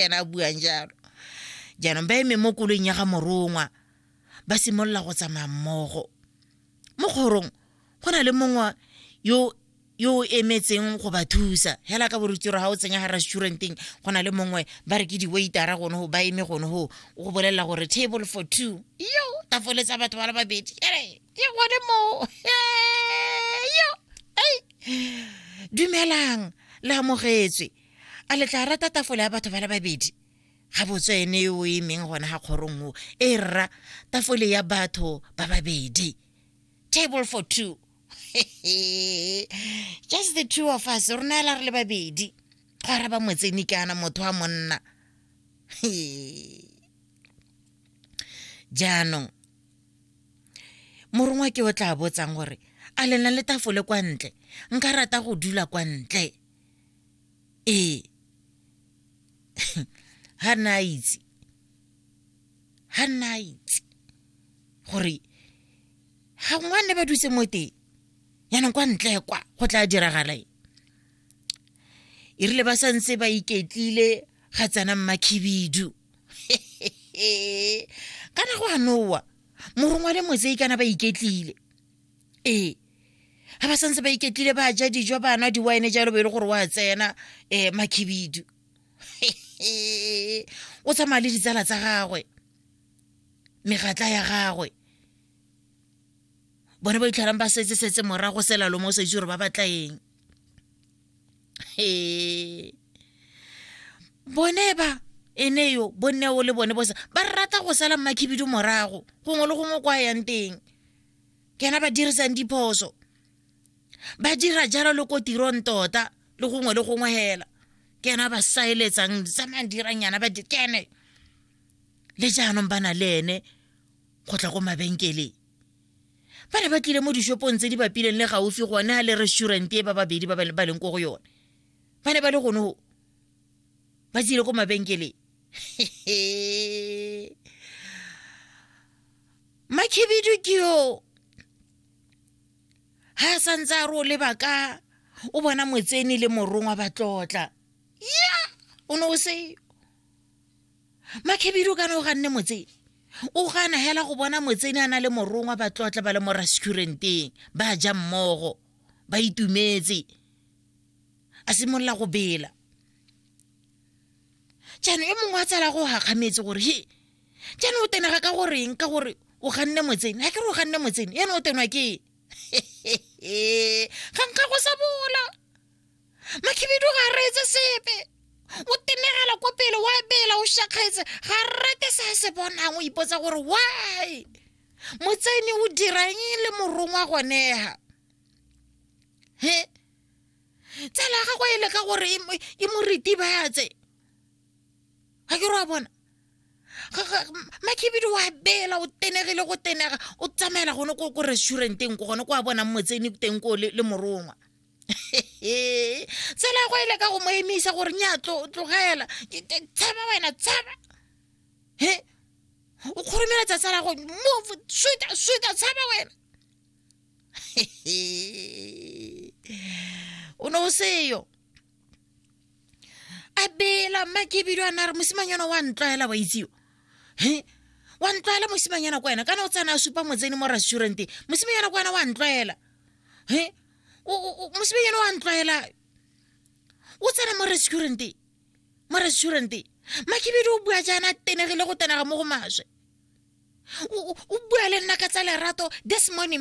ena a buang jalo jaanong ba eme mo koloing ya ga morongwa ba simolola go tsamaya mmogo mo kgorong go na le mongwe yo yo o emetseng go ba thusa hela ka borutiro ga o tsenya ga restauranteng go na le mongwe ba re ke di-waitera gone go ba eme gone go go bolelela gore table for two yo tafoletsa batho ba le babedi ere ke gone moo yo ei dumelang le amogetswe a le tla rata tafola ya batho ba le babedi ga botswa ene yo o emeng gona ga kgorong o e rra tafole ya batho ba babedi table for two just the two of us rona ela re le babedi go araba motseni kana motho wa monna jaanong morongwa ke o tla botsang gore a lena le tafole kwa ntle nka rata go dula kwa ntle ee ga nna a itse ga nna a itse gore ga ngwane ba dutse mo teng yaanong kwa ntle kwa go tla diragala e e rile ba sa ntse ba iketlile ga tsena mmakhibidu kana go a nowa morongwa le motse ikana ba iketlile ee ga ba santse ba iketlile ba ja dijo ba nwa di-wine jalo bo e le gore wa tsena um makhibidu o tsamaya le ditsala tsa gagwe megatla ya gagwe bone ba itlhalang ba setse setse morago selalo mo o sa itse gore ba batla eng bone ba e ne yo bonne o le bone bosa ba rata go sala mmakhibidu morago gongwe le gongwe kwa yang teng ke ena ba dirisang diphoso ba dira jalo le ko tirong tota le gongwe le gongwe hela ke ena ba saeletsang tsamayang dirang yana ba kene le jaanong ba na le ene go tla ko mabenkeleng ba ne ba tlile mo dishopong tse di bapileng le gaufi gone ga le restaurant e ba babedi ba ba leng ko go yone ba ne ba le gone go ba tsile ko mabenkeleng makhibidu ke yo ha santse a re o leba ka o bona motseni le morongwa ba tlotla ya o ne o seyo makhibidu kana o ganne motseni o gana hela go bona motseni a na le morongwa ba tlotla ba le mo restauranteng ba ja mmogo ba itumetse a simolola go bela jaanong e mongwe a tsala go gakgametse gore he jaanong o tenega ka goreng ka gore o ganne motsene ga ke re o ganne motsene ene o tenwa ke ga nka go sa bola makhibidu ga reetse sepe o tenegela ko pele wa bela o shakgetse ga rate se a se bonang o ipotsa gore why motsene o dirang le morongwa gonega he tsala ya gagwe e leka gore e, e mo ritibatse ga ke re wa bona makhibidu wa bela o tenegile go tenega o tsamaela gone ko ko restauranteng ko gone ko a bonang motseni teng ko le morongwa tsela go ile ka go mo emisa gore nya tlogela tshaba wena tshaba he o kgoromeletsa tsala go move suta suta tshaba wena o ne o seyo a bela mma ke ebile a na re mosimanyana wa ntlwaela wa itseo he wa ntlwaela mosimanyana kwa wena kana o tsana a supa motseni mo restauranteng mosimanyana kwa wena wa ntlwaela he mosimanyana wa ntlwaela o tsena mo restauranteng mo restauranteng makebedi o bua jaana tenegile go tenega mo go maswe o bua le nna ka tsa lerato this morning